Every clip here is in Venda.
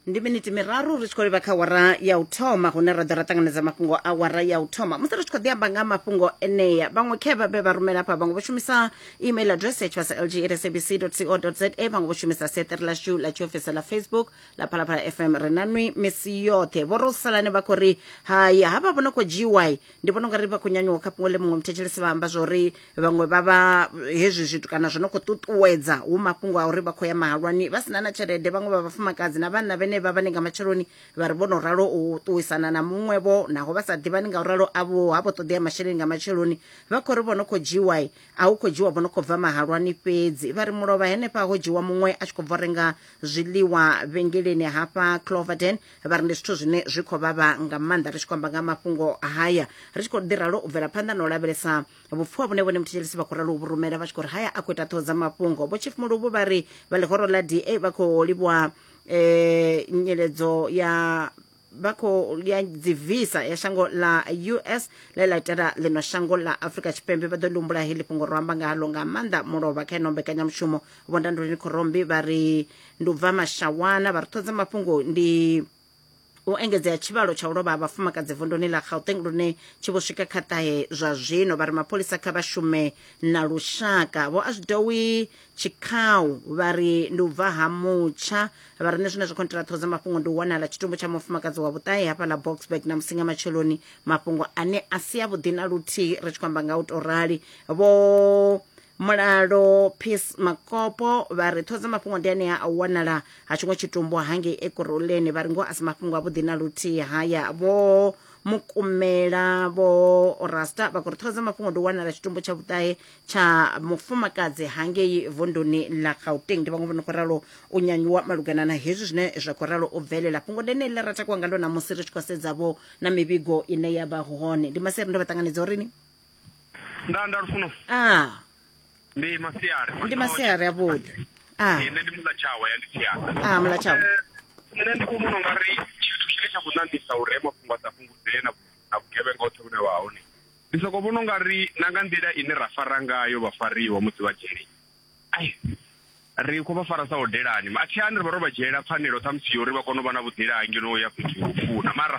ndi miniti miraru ri tshi khou livha kha wara ya u thoma hune ra ḓo ra ṱanganedza mafhungo a wara ya u thoma musi ri tshi khou ḓi amba nga mafhungo enea vhaṅwe khe vha vhe vha rumela hafha vhaṅwe vho shumisa email address ya tshivhasa lg at sabc co za vhaṅwe vho shumisa seṱere lashu ḽa tshiofisi ḽa facebook ḽa phalaphala fm ri na nwi misi yoṱhe vho rosalane vha khou ri hai havha vho no khou dzhiwai ndi vhona ungari vha khou nyanyuwa kha fhungo ḽe muṅwe muthetshelesi vha amba zwo ri vhaṅwe vha vha hezwi zwithu kana zwo no khou ṱuṱuwedza hu mafhungo a uri vha khou ya mahalwani vha sina na tshelede vhaṅwe vha vhafumakadzi na vhanna vhene vha vhane nga matsheloni vha ri vho no ralo u ṱuwisana na muṅwevho naho vha sa ḓivhani nga u ralo avho ha vho ṱoḓea masheleni nga matsheloni vha khou ri vho no khou dzhiwa a hu khou dzhiwa vho no khou bva mahalwani fhedzi vha ri mulovha henefha ho dzhiwa muṅwe a tshi khou bva renga zwiḽiwa vhengeleni hafha cloverden vha ri ndi zwithu zwine zwi khou vhavha nga maanḓa ri tshi khou amba nga mafhungo haya ri tshi khou ḓi ralo u bvela phanḓa na u lavhelesa vhupfiwa vhune vhone muthetshelesi vha khou ralo vhu rumela vha tshi khou ri haya a khou ita ṱhoho dza mafhungo vho chief muluvhu vha ri vha ḽihoro ḽa da vha khou livhuwa um nyeledzo ya vha khou ya dzi visa ya shango ḽa us ḽe ḽa itela ḽino shango ḽa afrika tshipembe vha ḓo ḽi humbula heḽi fhungo ro amba ngalo nga maanḓa mulovha kha ino mbekanyamushumo vhondanduleni khorombi vha ri ndi u bva mashawana vha ri ṱhodza mafhungo ndi u engedzea tshivhalo tsha u lovha ha vhafumakadzi vunduni ḽa gauteng lune tshi vho swika kha ṱahe zwa zwino vha ri mapholisa kha vha shume na lushaka vho a zwidowi tshikhau vha ri ndi u bva ha mutsha vha ri nṋe zwine zwa khou ntela ṱhoho dza mafhungo ndi u wanala tshitumbu tsha mufumakadzi wa vhuṱahe hafha ḽa boxburg na musinga matsheloni mafhungo ane a si avhuḓi na luthihi ri tshi khou amba nga u to rali vho mulalo peace makopo vha ri ṱhodza mafhungo ndi anea a u wanala ha tshiṅwe tshitumbu hangei ekuruleni vha ri ngoho a si mafhungo avhuḓi na luthihi haya vho mukumela vho rasta vha khou ri ṱhodza mafhungo ndi u wanala tshitumbu tsha vhuṱahe tsha mufumakadzi hangei vunduni ḽa gauteng ndi vhaṅwe vho no khou ralo u nyanyuwa malugana na hezwi zwine zwa khou ralo u bvelela fhungo ndi eneli ḽa ra takuwa ngalo ṋamusi ri tshi khou sedza vho na mivhigo ine ya vha hone ndi masiari ndo vha ṱanganedza urini nda nda lufuno a ndi masiari ndi masiari avhuḓi a Eh, nṋe ndi mulatshawa ya ndisiana a mulatshawa nṋe ndi khou vhona ungari tshithu tshine tsha khou ṋaṋisa uri he mafhungo a sa fhungudzee na na vhugevhenga hoṱhe vhune vha hone ndi sokou vhona ungari na nga nḓila ine ra fara ngayo vhafariwa musi vha dzhele Ai, ri khou vha fara sa hodelani. A thi hani ri vha ro vha dzhiela pfanelo ṱhamusi yo uri vha kone u vha na vhuḓila ha ngeno u ya fhethu ho funa. Mara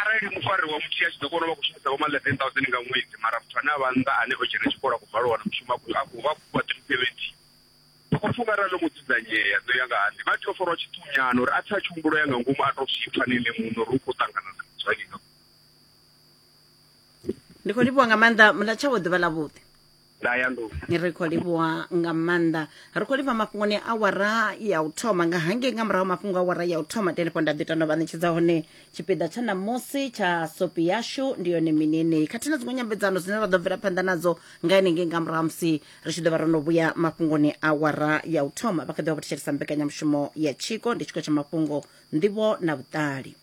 arali mufari wa muthihi a tshi ḓo kona u vha khou shumisa vho ma 11000 nga ṅwedzi mara muthu ane a vha nnḓa ane o dzhena tshikolo a khou bvalwa wana mushumo a khou a khou vha khou fhiwa 370. Ndi khou pfa u nga arali ḽo mu dzudzanyea nṋe u ya nga ha nṋe vha tea u farwa tshiṱunyana uri a tsa a tshi humbulo ya nga ngomu a tou zwi pfa na ene muṋe uri u khou ṱangana na zwa nnyi nga ndi khou livhuwa nga maanḓa muḽa tshavho ḓuvha ḽavhuḓi ndayanḓou ni ri khou livhuwa nga maanḓa ri khou livha mafhungoni a awara ya u thoma nga hangei nga murahu mafhungo a awara ya u thoma tenepo nda ḓi tanda vha ṋetshedza hone tshipiḓa tsha ṋamusi tsha sopi yashu ndi yone mini yeneyi khathihi na dziṅwe nyambedzano dzine ra ḓo bvela phanḓa nadzo nga henengei nga murahu ha musi ri tshi ḓo vha ro no vhuya mafhungoni a awara ya u thoma vha kha ḓi vha vho thetshelesa mbekanyamushumo ya tshiko ndi tshiko tsha mafhungo nḓivho na vhuṱali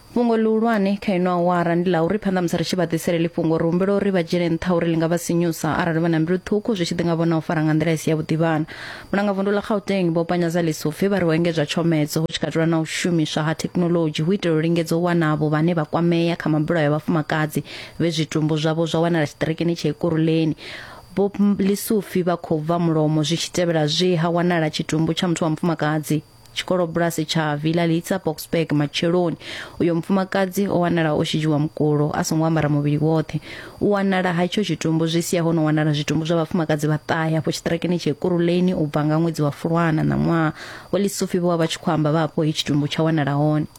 fhungo ḽihulwane kha ino awara ndi ḽa uri phanḓa musi ri tshi vha ḓisele ḽi fhungo ri humbela uri vha dzhiele nṱha uri ḽi nga vha sinyusa arali vha na mbilu ṱhukhu zwi tshi ḓi nga vhona u fara nga nḓila i si yavhuḓi vhana vhulanga vundu ḽa gauteng vho panyadza ḽisupfi vha ri ho engedzwa tshomedzo hu tshi katelwa na u shumiswa ha thekhinoḽodzhi hu itela u lingedza u wana avho vhane vha kwamea kha mabulayo a vhafumakadzi vhe zwitumbu zwavho zwa wanala tshiṱirikini tsha ikuruleni vho ḽisupfi vha khou bva mulomo zwi tshi tevhela zwe ha wanala tshitumbu tsha muthu wa mufumakadzi tshikolobulasi tsha villa litsa boxburg matsheloni uyo mufumakadzi o wanala o shidzhiwa mukulo a songo ambara muvhili woṱhe u wanala ha itsho tshitumbu zwi sia ho no wanala zwitumbu zwa vhafumakadzi vhaṱahe afho tshiṱirakeni tsha ekuruleni u bva nga ṅwedzi wa fulwana na ṅwaha wa lisufi vho vha vha tshi khou amba vha afho he tshitumbu tsha wanala hone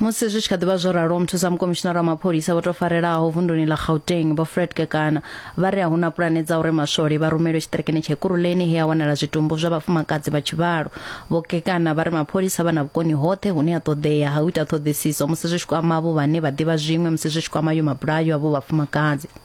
musi zwi tshi kha ḓivha zwo ralo muthusa mukomishinara wa mapholisa vho tou farelaho vunduni ḽa gauteng vho fred kekana vha ri a hu na pulane dza uri maswole vha rumelwe tshiṱirikini tsha ikuruleni he a wanala zwitumbu zwa vhafumakadzi vha tshivhalo vho kekana vha ri mapholisa vha na vhukoni hoṱhe hune ha ṱoḓea ha u ita ṱhoḓisiso musi zwi tshi kwama avho vhane vha ḓivha zwiṅwe musi zwi tshi kwama yo mabulayo avho vhafumakadzi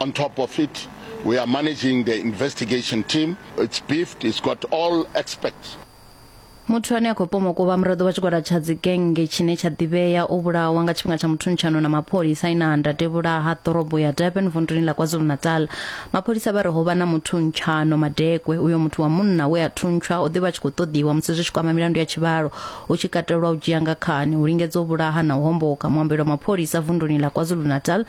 On top of it, we are managing the investigation team. It's beefed, it's got all experts. Muthu ane a khou pomoka u vha muraḓo wa tshigwada tsha dzigennge tshine tsha ḓivhea o vhulawa nga tshifhinga tsha muthuntshanwo na mapholisa ina anda tevhula ha ḓorobo ya Durban vunduni ḽa KwaZulu-Natal. Mapholisa vha ri ho vha na muthuntshanwo madekwe. Uyo muthu wa munna we a thuntshwa o ḓi vha tshi khou ṱoḓiwa musi zwi tshi kwama milandu ya tshivhalo, hu tshi katelwa u dzhia nga khani, u lingedza u vhulaha na u homboka. Muambeli wa mapholisa vunduni ḽa KwaZulu-Natal,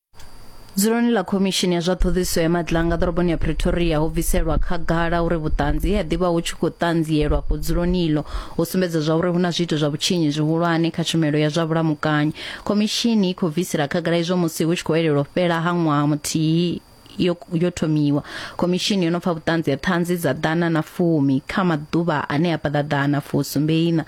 Dzuloni ḽa Khomishini ya zwa Ṱhoḓisiso ya Maḓi ḽa nga ḓoroboni ya Pretoria ho bviselwa khagala uri vhuṱanzi he ha ḓivha hu tshi khou ṱanzielwa afho dzuloni iḽo ho sumbedza zwa uri hu na zwiito zwa vhutshinyi zwihulwane kha tshumelo ya zwa vhulamukanyi. Khomishini i khou bvisela khagala izwo musi hu tshi khou elelwa u fhela ha ṅwaha muthihi yo, yo thomiwa. Khomishini yo no pfa vhuṱanzi ha ṱhanzi dza ḓana na fumi kha maḓuvha ane a paḓa ḓana fusumbeiṋa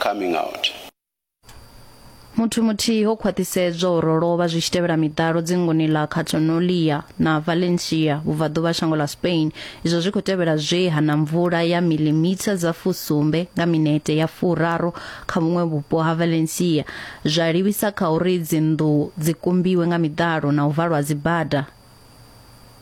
coming out. Muthu muthihi ho khwaṱhisedzwa uri o lovha zwi tshi tevhela miḓalo dzingoni ḽa Catalonia na Valencia vhubvaḓuvha shango ḽa Spain izwo zwi khou tevhela zwe ha na mvula ya milimitha dza fusumbe nga minete ya furaru kha vhuṅwe vhupo ha Valencia zwa livhisa kha uri dzinnḓu dzi kumbiwe nga miḓalo na u valwa dzibada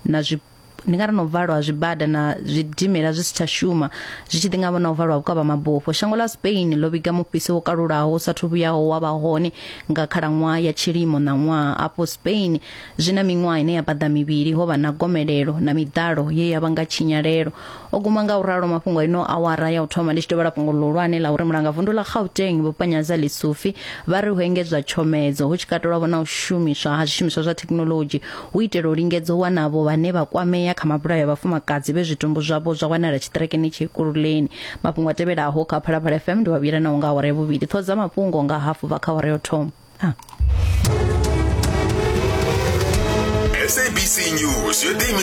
na zwi ndi nga ri na u valwa ha zwibada na zwidimela zwi si tsha shuma zwi tshi ḓi nga vhona u valwa vhukavha mabufho shango ḽa spain ḽo vhiga mufhiso wo kalulaho u sathu vhuyaho wa vha hone nga khalaṅwaha ya tshilimo ṋaṅwaha afho spain zwi na miṅwaha ine ya paḓa mivhili ho vha na gomelelo na miḓalo ye ya vha nga tshinyalelo o guma nga u ralo mafhungo a ino awara ya u thoma ndi tshi dovhela fhungo ḽihulwane ḽa uri mulanga vundu ḽa gauteng vhupanyadza lisufi vha ri hu engedzwa tshomedzo hu tshi katelwavho na u shumiswa ha zwishumiswa zwa thekinolodzhi hu itela u lingedza u wanavho vhane vha kwamea kha mabulayo a vhafumakadzi vhe zwitumbu zwavho zwa wanala tshiṱirekeni tshikululeni mafhungo a tevhelaho kha phalaphala fm ndi wa vhuyela naho nga awara ya vhuvhili ṱhoho dza mafhungo nga hafu bva kha awara ya u thoma ah. sabc news yo ḓiimisa